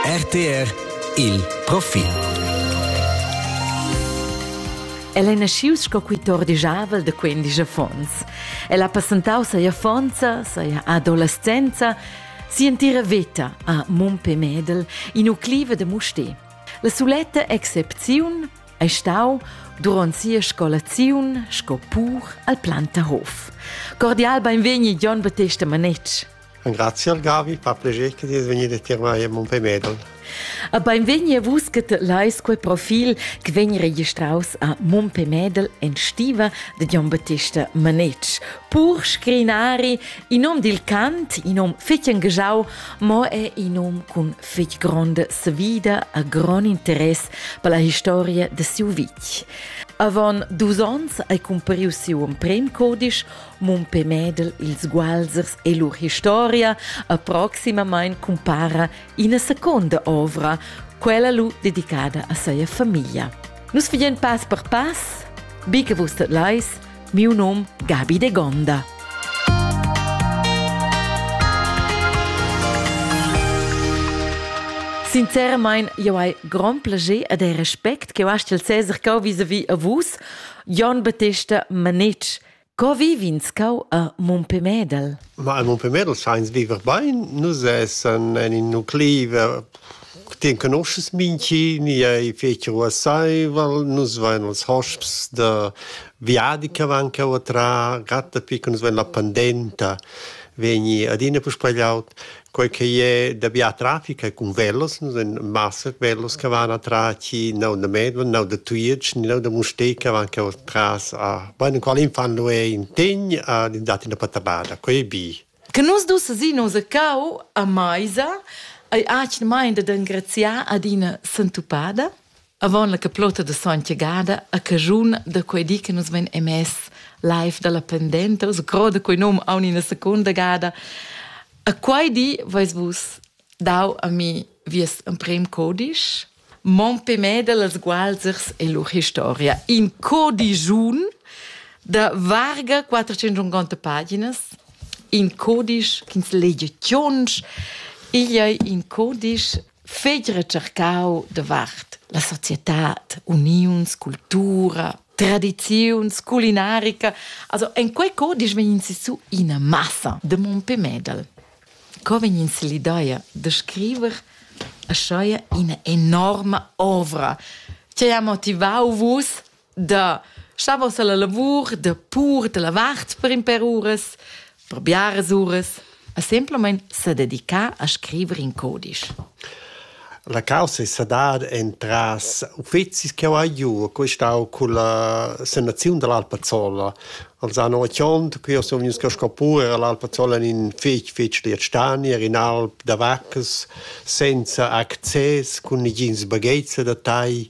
RTR il profil. El è naschius sco quitor dijavel da quindisch affons. El ha passentau sia fonza, sia adolescenza, sia entira veta a Mumpe Medel, in ucliva da Mustè. La suletta excepziun è stau durant sia scolaziun sco pur al Plantahof. Cordial beinvegni Jon Battesta Manetsch. Engraziel Gavi per pleger che ti es vegnida tier mai a Montpellier. Beinvegni a vus che te leis quei profil che vegn registraus a Montpellier en stiva de Gian Battista Manetsch. Pur scrinari in nom dil cant, in nom fetg engajau, mo è in nom cun fetg gronda svida a grond interess per la historia de siu vitg. Avon dus onns ei compariu siu emprem codisch Mumpé Mädel, ils Gualsers e lur historia a proximamain cumpara ina seconda ovra, quella lu dedicada a seia famiglia. Nus fagen pass per pass, bi che vus dat leis, miu num Gabi de Gonda. Sinceramente, io hai gran piacere e del respect che ho il Cesar che ho vis-a-vis a vus, Jon Battista Manich, Co viv'ins cau a Mompemedel? Ma a Mompemedel sainz viver bain. Nus essan in in nuclei ti conoschas minchi, ni ei fetg ruasseivel, nus vein els hosps da viadi che van cheu a trar, gratta pi che nus vein la pandenta vegni adina puspei laud. Quei ch'ei è da bia traffic è cun velos, ein massa velos che van atras chi neu da Medvon, neu da Tujetsch, neu da Mustér che van cheu atras a beinenqual infant lu ei in tegn ad in dat ina patabada, quei ei bi. Che nus dus sin nos cau a meisa ei atgnamain dad engraziar ad ina sentupada. Avon la caplota de Sontgagada a caschun da quei di che nus vein emess live dalla pendenta, us groda quei num aun ina secunda gada. A quei di veis vus dau a mi vies emprem codisch, Mon pemeda las gualzers e lur historia. In codigiun da varga 450 paginas, in codisch ch'ins legia tschonsch, igl ei in codisch fegl recercau davart la societad, uniuns, cultura, tradiziuns, culinarica. Also en quei co disch vegn su ina massa de Mompé Medal. Co vegn ins l'idea de scriver a scheia ina enorma ovra? Che ha motivau vus da shavos alla lavur da pur de la vart per in per uras per biaras uras a semplamein sa dedicar a scriver in codisch La causa è sedar entras uffizis che ho giù, questa ho con la sanazione dell'Alpazzola. Also an Ochiond, qui son vegnuts cascà pure all'Alpazzola in fetg fetg liet stani, in alp da vaccas, senza access, con negins bagheizza da tai,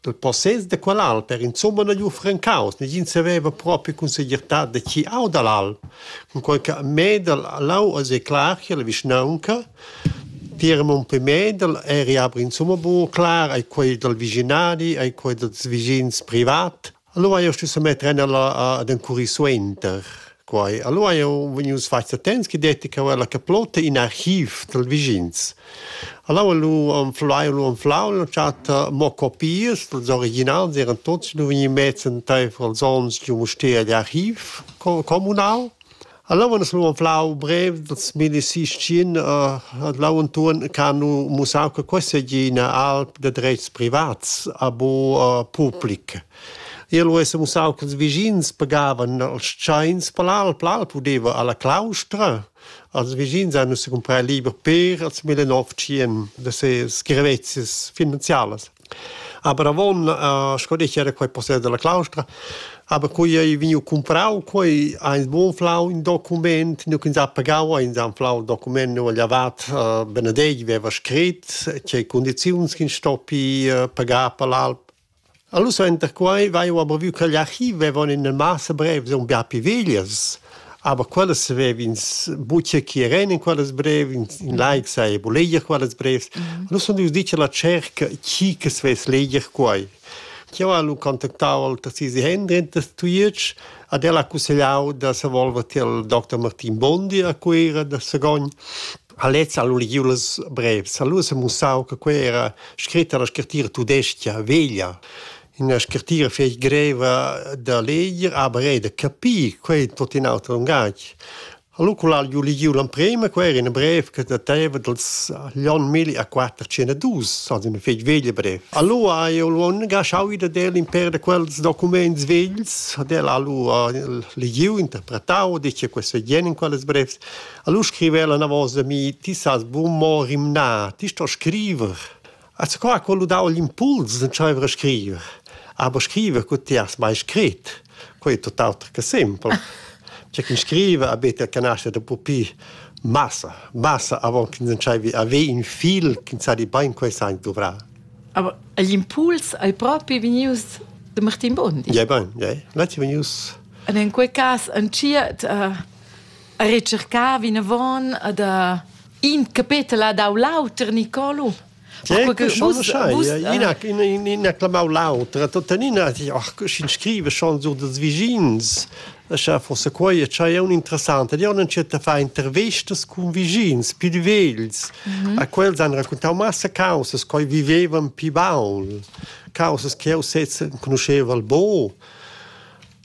Dal possess da quel alter insumma na gnü francaus, negin saveva propi cun segirtà da chi auda l'al. Cunquai cha Medel ha lau a zeclar che la vischnaunca tier mon per Medel eri aber insumma buca clar ai quei dal vischinadi, ai quei dals vischins privat. Allora io stu semetter ella ad encurrir suenter quai. Allora io vegnius fats attents che detti che la caplotta in archiv dal vigins. Allora lu anflau lu anflau l'ho chat mo copias vals originals eran tots lu vegni mezz entaifer als ons giu Mustér d'archiv comunal. Allora es nu plau brev dals milisischin l'antuorn ch'ha nu mussà che questa égina alp da drets privats a bo public. Eu es mussà ch'ils vischins pagavan als tschains per l'alp. L'alp udeva alla claustra. Als vischins hanno si comprà liber per als 1900 da se scrivezias finanzialas. Aber avon eh, sco detg era quei possess dalla claustra, aber quei ei vegniu cumprau, quei ha ins buca flau in document, nu ch'ins ha pagau, ins ha flau il document nu agl avat eh, Benedetg veva scrit, tgei condiziuns ch'ins stoppi eh, pagar per l'alp. Allora enter quei vai aber vu che l'archiv vevon in massa brev, un bia piviglias, Aber quellas savev'ins buca chi eran in quellas brev, in, in laic saja bu leger quellas brevs. Mm. Nus sun ius dir cha la tscherca chi che svess leger quai. Jau ha lu contactau al Tassisi Hendrin da Tujetsch ad el ha cussegliau da se volver til Dr. Martin Bondi a Cuira da Sagogn. A lez ha lu legiu las brevs, ha lu se mussau che quei era scritta la scrittura tudesca veglia. Ina scrittira fetg greva da leger, aber era da capir, quei è tot in auter lungatg. Allora quel ha ju legiu l'emprema, quei era in brev che dateva dals l'onn mille a quattrocentadus, also una fetg veglia brev. Allora ha io lu engaschau da del in per da quels documents vegls, ad el ha allora legiu, interpretau, dice questo è jen in quelles brevs. Allora scriveva la una volta da mi, ti sas buon mo rimnar, ti sto scriver. Az qua ha quello dau l'impuls d'entscheiver a scriver. Aber scriver cu ti has mai scrit, quei è tutt'auter che simpel. C'è chi scrive a bete che nasce da pupi massa, massa avant che entscheivi a ve in fil che sa di bain quei sa dovrà. Aber l'impuls hai proprio venius de Martin Bondi. Ja, bain, ja. L'ha venius. Und in quel cas, en cia, uh, a recercar vinavon ad in capetel dau l'auter Nicolo. ina clamau l'autra, tuttenina in scrive chanzur dels vigins, scha forse quai è un interessante, di un certa fa intervestas con vigins più vegls, mhm. a quels han raccontau massa causes coi vivevan pi baul, causes che eu sezza conosceva al bo,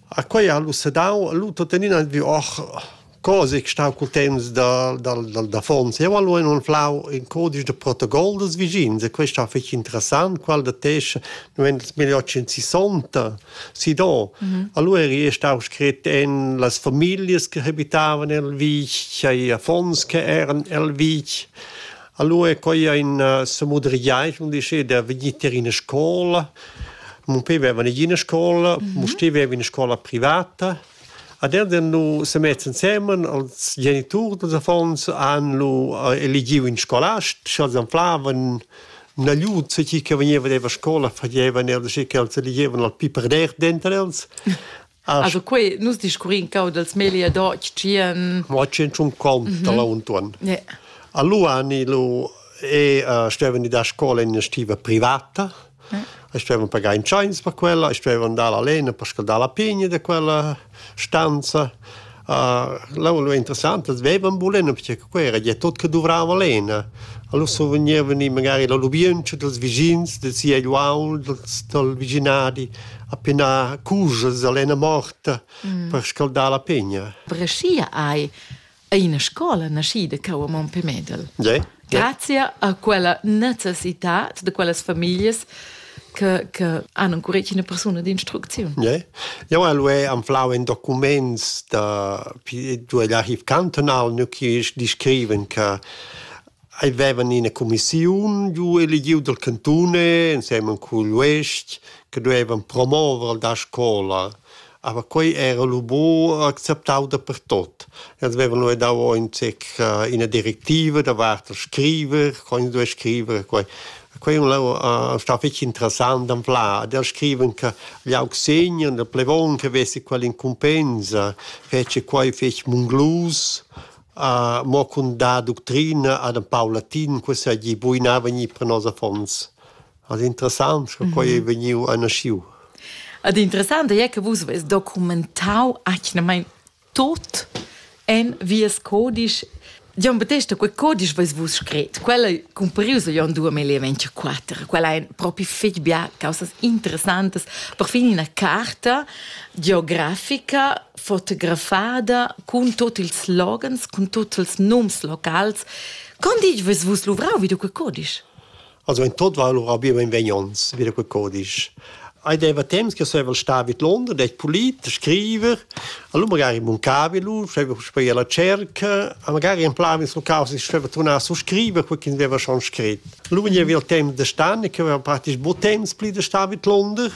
A quei ha lu sedau, lu tuttenina vi och cose che stau cul temps da, dal, dal davons. Eu hal lu anflau in codice de protocol dels vischins e questo ha fich interessant, qual da tesch 1860 si do. Mhm. Allora è stau scrit en las familias che habitavan el vitg, ai affons che eran el vitg. Alura è quai aina samudrigliaint, mun dice, da vegnir tier ina scola. Mun pe veva negina ina scola, mun steva veva ina scola privata. Ad enda nu se mett insemen als geniturs dals affons han lu eligiu in scolast, sch'els anflavan nagliut chi che vegneva della scola fagevan els che els eligevan al pi per der denter els. Also quei, nus discurrin cau dels melia deutsch tschien. Mo centrum com da la Untuan. Yeah. A Luani lu e uh, stevani da scola in stiva privata. Yeah. Stevan pagar in chance per quella, stevan dalla lena per scaldare la pigna di quella stanza. L'aula interessanta vevan bulena perche che quei era gia tot che duvrava lena. Allura survegnevan i magari la lubientscha dals vischins, da sia egl uaul, dals, dal vischinadi a penar cujas a lena morta mm. per scaldar la pegna. Breschia ei ei ina scola naschida cau a Montpellier. Yeah. Grazia a quella necessitad de quellas familias che, che hanno ancora una persona di instruzione. Yeah. Eu al e anflau in documents da due archiv cantonal nu chi descriven che avevan ina commissiun giu eligiu del cantone insieme cugl uest che duevan promover da scola Aber quei era lu buc acceptau dapertut. Els vevan lu dau aunc ina directiva davart il scriver, co ins duei scriver e quei. Quei è stau fetg interessant d'anflar. Ad els scriven che gli aug segner, il plevon che vesi quell'incumbensa, fece quei fetg munglus, mo cun dar ductrina ad in pau latin, che seigi buinava gnir per nos affons. Ad interessant sco quei ei vegniu a naschiu. Ad interessant ei che vus veis documentau atgnamein tot en vies codisch. Gian Battesta, quei codisch veis vus scret, quel ei cumparius a Jon 2024, quel ein propi fetg bia causas interessantas. Perfin ina carta geografica fotografada cun tutti ils slogans, cun tutti ils nums locals. Con ditg veis vus luvrau vid quei codisch? Also in tot war lura wie mein Venjons, wieder gut kodisch. Ei deva temps che sevel sta vid London, det polit, scriver, allora magari in muncavi lu, sceva spei alla cerca, a magari in plan sul caos, ich sceva tornar su scriver, quel che deva schon scrit. Lu vegni via il temps de stan, che aveva praktisch bo temps pli de sta vid London,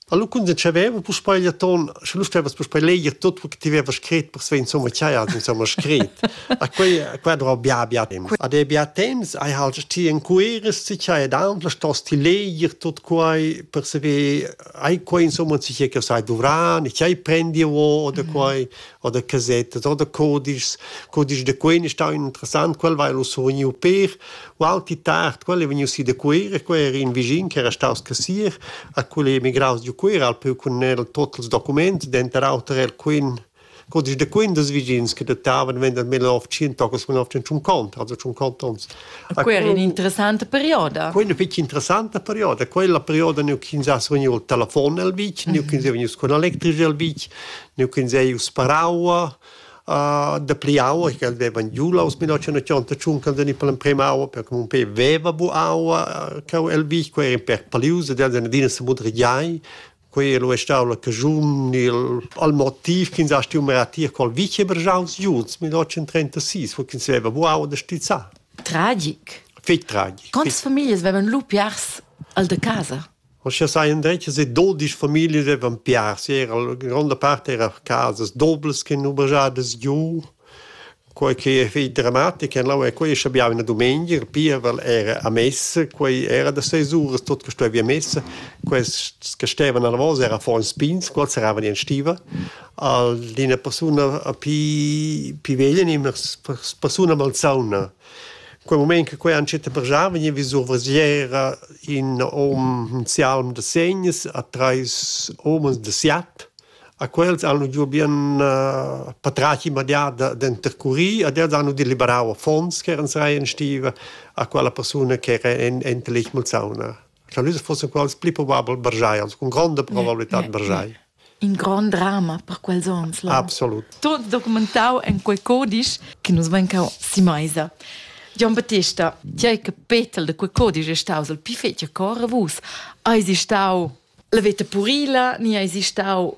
Allo cuntenschaveva puspei gli ton, sche lu stevas puspei leger tot quel che ti vevas scret persei insomma chai ha insomma scret. A quei a quei drò bia bia temps. Ad e bia temps hai halt ti encueres ti chai ed aunc stos ti leger tot quei per saver hai quei insomma si che che sai dovran e chai prendi o oder quei oder casette oder codices codices de quei ne stau interessant quel vai lo surniu per Ual pi tard, quel è vegniu si da Cuera, quei era in vischin che era staus cassier, a quel è emigraus giu Cuera al peu cun el tot ils documents, denter auter er quin codisch da quin des vischins che datavan vender mil novecentocas millenovecentuncont, also cinquanta onns. Quei era un'interessanta perioda. Quella fece interessanta perioda, quella perioda neu ch'ins ha vegniu il telefon el vitg, neu ch'ins è vegnius con electrici el vitg, neu ch'ins è ius per aua, dapli aua, ch'el vevan giu la aus 1980 tschuncan den per l'emprema aua, perché mon pe veva bu aua, cheu el vi, quei era in per palius, ed el den adina se mudregiai, quei era lu è stau la cagiun, il, al motiv ch'ins ha stiu meratir col vicebergiaus Junts 1936, wo ch'ins veva bu aua da stizzar. Tragic. Fig tragic. Quantas famiglias vevan lu piars al de casa? Aschia seien detg e dodisch familias devan piars. Era la gronda part era casas doblas che han obergiadas giu. Quei che ei fetg dramatic en lau è quei schabiava una dumengia, il pievel era a messa, quei era da seis uras tot che stuevi a messa. Quels che stevan alla vosa era affons pigns, quels eravan in stiva. Al d'ina persuna a pi pi veglia ni una persuna malsauna. Quei mument che quei entschiet brgiar vegniva vis survesiera in hom in sialm da segns a treis umas da siat. A quels han giu bien patratg immediat da d'intercurir ed els han deliberau affons ch'eran serai en stiva a quella persuna ch'era en enta letg malsauna. Scha nus fussen quels pli probabel bargiai, cun gronda probabilità bargiai. In grond drama per quels ons. Là. Absolut. Tot documentau en quei codisch che nus vein cau si meisa. Gian Battista, ti hai che Petel de quei codisch è staus il più fetg cor a vus. Hai si stau la veta purila, ni hai si stau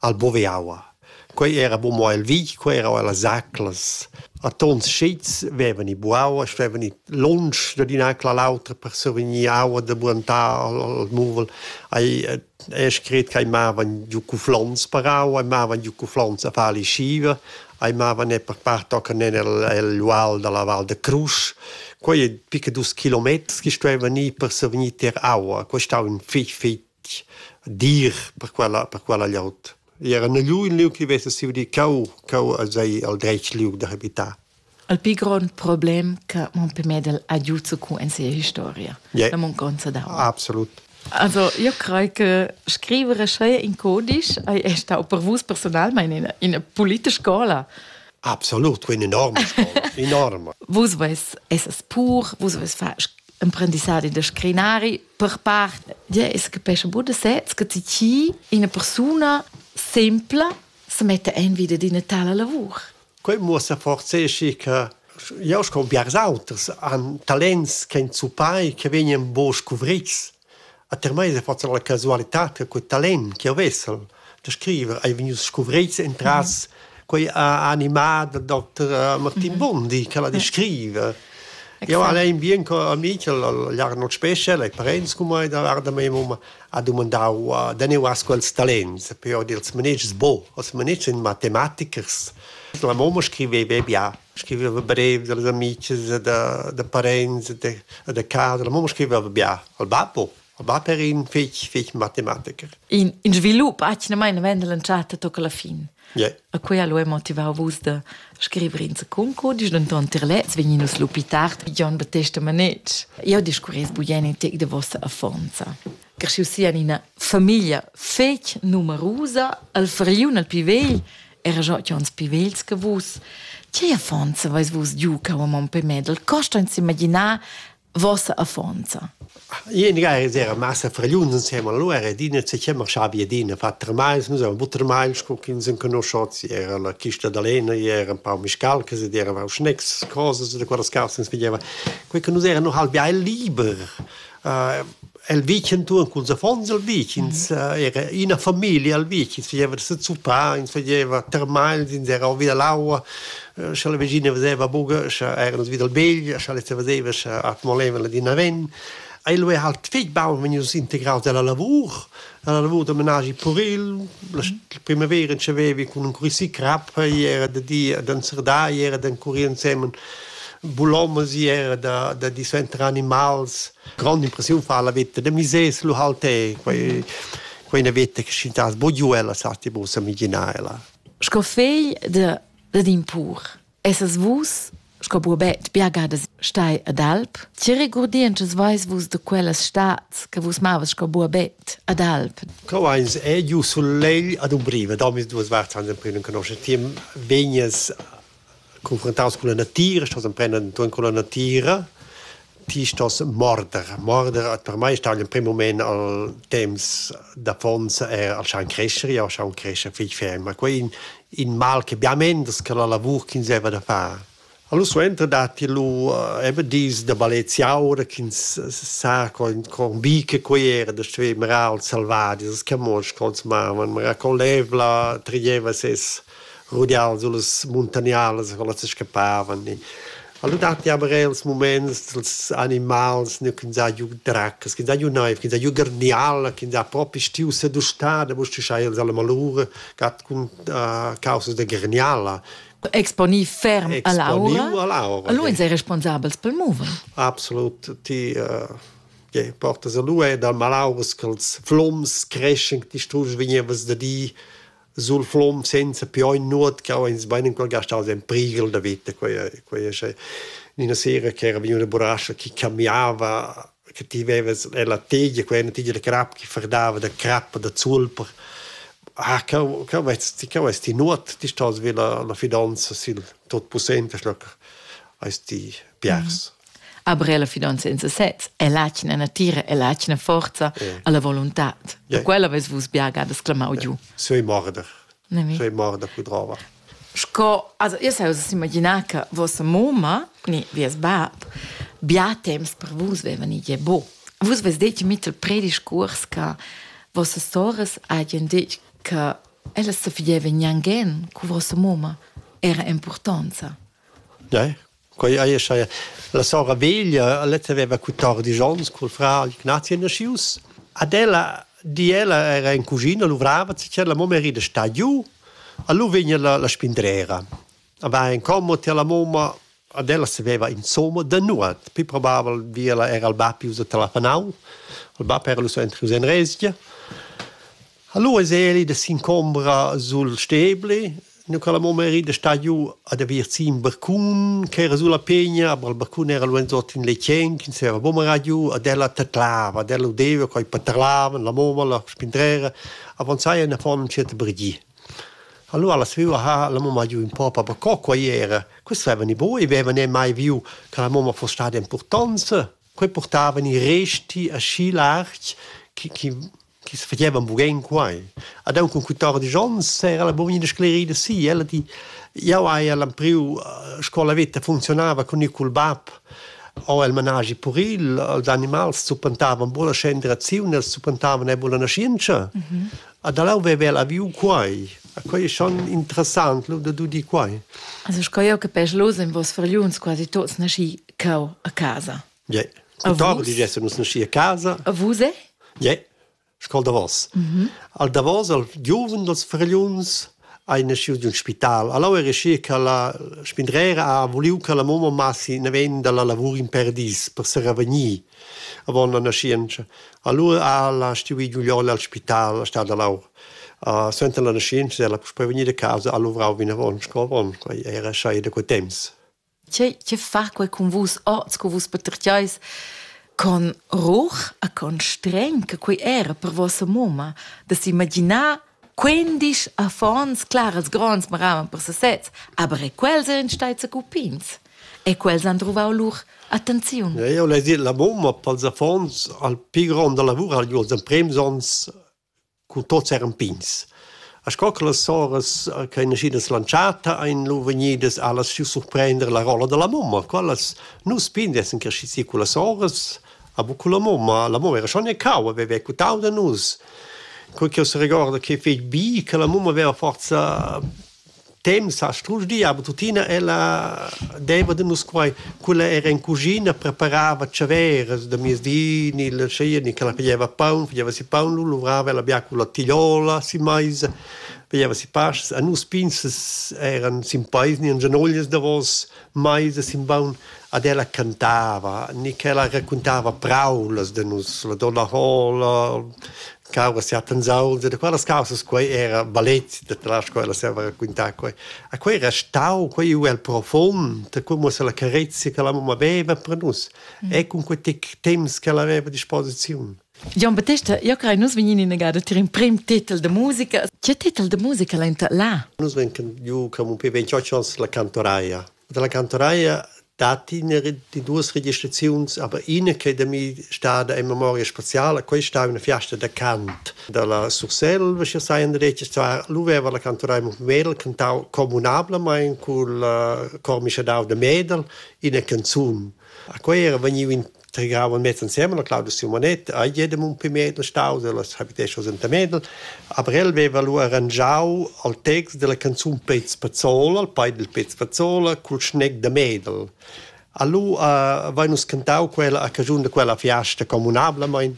al Boveaua. Quei era bu mo el vitg, quei era ella zaclas. A tons schits vevan i buaua, stevan i lunsch dad in'acla all'autra per survegnir aua da buantar al, al muvel. Ei ei scret ch'ei mavan giu cuflons per aua, ei mavan giu cuflons a far lischiva, ei mavan er per part tochen en el, el ual dalla Val de Crusch. Quei ei pica dus kilometers che stuevan ir per survegnir tier aua. Quei stau in fitg, fitg dir per quella per quella glieud. I era in lieu in lieu che vesa siu di cau cau als ei al dretg liug da habitar. Il più grande problema che Montpellier ha avuto con in sia historia, yeah. la mancanza d'aua. Absolut. Also, io credo che scrivere sei in codice è stato per voi personalmente in una politica scuola. Absolut, una enorme scuola, enorme. Vus avete essere pur, vus avete fatto imprendissati da scrinari, per part ja, es capesce buona sez che ti chi ina persuna sempla se mette en vita d'ina tala lavur. Quel muossa forzechi che jau sco biars auters han talents che in zupai che vegnan bo scuvrits. A ter mai se faccia la casualità che quel talent che ho vessel da scriver ei vegnius scuvreits entras quei animà da Dr. Martin Bondi che va di scriver. Io al ein bien co amic l'Arnold Special ai parents cum mai da varda mei mum ha domandau da ne was quels talents per ord ils manegis bo os manegis in matematichers la mamma scriveva bia scriveva brev dals amici da da parents da da casa la mamma scriveva bia al babbo Va per in fich fich matematiker. In, in svilup atgnamain Mendel in chatta tocca la fin. Yeah. A quei allo è motivau vus da scrivere in concodisch, denton tier lez vegni nus lupi tard Jon Battesta Manetsch. Io discurres bugeni tec de vossa affonza. Cresciu sia ina famiglia fec numerusa, al fariun al pi vegl, era già uns pi vegls che vus. Che affonza vais vus giu cau a mon pe Medel, costa ins imaginar vossa affonza. Ien ga era massa fragliun insem allora ed ina se chiama Schabiedina Vatermeis, nus eran Buttermeis, con che ins conoscot, era la chista d'Alena, era un pau miscalcas ed era auch Schnecks, cosas da quella scalsens pigliava. Quei che nus eran noch halb liber. Uh, El vitg entuorn culs affons el vitg, ins era ina famiglia al vitg, ins fageva da sezuppar, ins fageva termagls, ins era vi dall'aua, scha la vegina veseva buca, scha eran nus vi dal begl, scha lez veseva, scha molevan la dina ven. Ei lu era halt fetg baun vegnius integraus dalla lavur, dalla lavur da menaschi puril. La primavera entschevevi cun encurir crap, ei era da di ad enzerdar, ei era d'encurir ensemen bulomas, ei era da, da di suenter animals. grand'impressiun fa la veta da misers lu halt è quei quei una veta che schintas bogiu ella sa ti bu s'amigina ella sco fegl de de d'impur essas vus sco buobet biagadas stai ad alp che regurdientschas veis vus de quellas stads che vus mavas sco buobet ad alp Co eins è giu sul legl ad umbriva, da mis duas varts an den prünen conosce, ti vegnes confrontaus con la natira, stos emprendan ton con la natira, ti stos morder. Morder per mei stau in prim moment al temps d'affonza er al schaun crescere, ja schaun crescere fich ferm, ma quei in, in mal che biamen das che la lavur ch'ins heva da far. Allora suenter datti lu eh, eben dis da baleziaura ch'ins sa con con bi che quei era da stuer marar al selvadi, das che mos consumava, ma con l'evla trieva ses rudian sullas muntagnalas co las scappavan e Alura datti aber eir ils muments dals animals nu chi n'sa giü draccas, chi n'sa giü naiv, chi n'sa giü garniala, chi n'sa propi stiu sedustada, mo stüscha eir la malura gat cun causas da garniala. Exponì ferm a l'aura. a l'aura. E lura sei responsabels pel mover. Absolut, ti ja, portas a lura dal malauras ch'els floms creschen, ti strusch vegnevas da dir sul flom senza più ogni nuot che ho ins bein ancora gastaus en priegel da vita quei quei sche in sera che era vegniva una burasca che cambiava che ti veves la tegia quella una tegia da crap che ferdava da crap da zulper ah co co vest ti co vest ti nuot ti stos vi la la fidanza sil tot possente schloc eis ti piars Aber la fidanza in sesez è l'atgna natira e l'atgna forza yeah. alla volontad. Yeah. Quella ves vus biaga da sclamau giu. Sei morder. Sei morder cudrava. Sco, also io sai uss imaginar che vostra mamma, ni vies bab, bia temps per vus vevan i bo. Vus ves detg mit il prediscurs che vostra soras hagen detg che ella se fideva gnangen cu vostra mamma era importanza. Ja, Quei ei schai la sora veglia, lezza veva quattordici onns col frar Ignazio nascius. Ad ella di ella era in cugina, luvrava, la mamma era sta giu, allora vegna la, la spindrera. A va in commo ti alla mamma, ad ella saveva insomma da nuot, poi probava vi ella era al bab usa telefonau, il bab era lu so entri usa in resgia. Allora es eli da s'incombra sul stebli, Nu ch'el amo meri da sta giù ad aver gì ün barcun ch'era sulla pegna, aber il barcun era luanzot in letgen, ins era buca marà giù, ad ella tadlava, ad ella udeva coi patarlavan, la moma, la spindrera, avanzaia in affon ün tschert brigi. Allura la sviua ha la mamma giù ün po pa per co quai era. Questi avevan i voi, avevan e mai viu che la mamma fosse stata importanza. Quei portavan i resti aschi larg che, che chi's fagevan bugün quai. Ad aunc cun quatordisch ons era la bugna da sclerida si. Ella di, jau haja l'empriu scola veta funzionava cun il cul bab o el managi puril, els animals zuppentavan bulla scenderaziun, els zuppentavan e bulla naschientscha. Mm -hmm. Ad alau veva la viu quai. Quai è schon interessant, lo da du di quai. Also, sco jau capesch, los en vos fargliuns quasi tots nasci cau a casa. Ja. Tuttavia digessan nus naschi a casa. A vus è? Ja. Scol davos. Al davos al giuven dals fragliuns hai naschiu di un spital. Allora era schi che la spindrera ha voliu che la mamma massi naven dalla lavur in perdis per se revegnir. Avon la nascienza. Allora ha la stuiu giugliol al spital, a stad allora. Uh, suenter la nascienza è la prevegnir da casa ha luvrau vinavon sco avon. Quei era schei da quei temps. che, che fa quei cun vus oz, cu vus patertgeis con ruch e con streng che quei era per vossa mumma, da s'imaginar quindisch affons claras gronds maravan per sesez, aber e quels ein stai cupins. E quels han truvau lur attenziun. Ja, io l'hai dit, la mumma pels affons al pi grond da lavur ha gli els emprems ons Cun tots eran pigns. E sco che las soras che ein naschidas lantschata ein lu vegnidas allas giu surprender la rolla dalla mamma. Quellas nus pigns essan cresci si cun las soras, a bu cun la mamma. La mamma era schon e cau, haveva quitau da nus. Quei che seregorda che fetg bi che la mamma haveva forza Temps ha strusch aber tuttina ella deva da nus quai. Quella era in cuschina, preparava tschavèras da miezdi ni la scia ni ch'ella faglieva paun, faglieva si paun, lu luvrava ella bia con la tigliola si meisa, faglieva si pastas. A nus pinzas eran sin peis ni en gianoglias davos meisa sin baun ad ella cantava ni ch'ella raccuntava praulas da nus, la donna Hola, cauras ja pensau de quellas causas quei era balet de tras quella se va raccontar quei a quei restau quei u el profond come se la carezia che la mamma aveva per nus mm. e con quei temps che la aveva disposizione Gian Battesta, io crei nus vegnin in agada tir in prim titel de musica. Che titel de musica l'enta là? Nus venken ju come un pe 28 ans la cantoraia. dalla cantonaia datti ina di duas registraziuns, aber ina che da mi stada in memoria spaziala, quella sta una fiasta da cant dalla Surselva, sche sai in detg, zwar luveva la cantonaia Mumel cantau communablamain cul uh, cor mischadau da Medel ina canzun. A quei era vegniu in tregavan mez ensemen, la Claudia Simonet, a jedem un pi mezl stau dellas habitesas enta Medel, aber el veva lu arrangiau al text della canzun Pez Pazzola, al pai del Pez Pazzola, cul schneg da Medel. Allu uh, vai nus cantau quella a cagiun de quella fiasta comunablamein.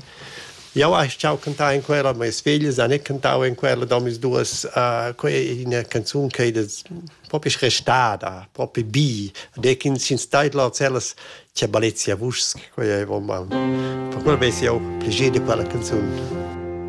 Jau hai ciao cantau in quella, ma es figlis han cantau in quella da mis duas uh, quei in canzun che das proprio restada, proprio bi, de kin sin staitla cellas C'è Balezia Vusch, quei è vom. Per quel vesi jau pli gede per la canzun.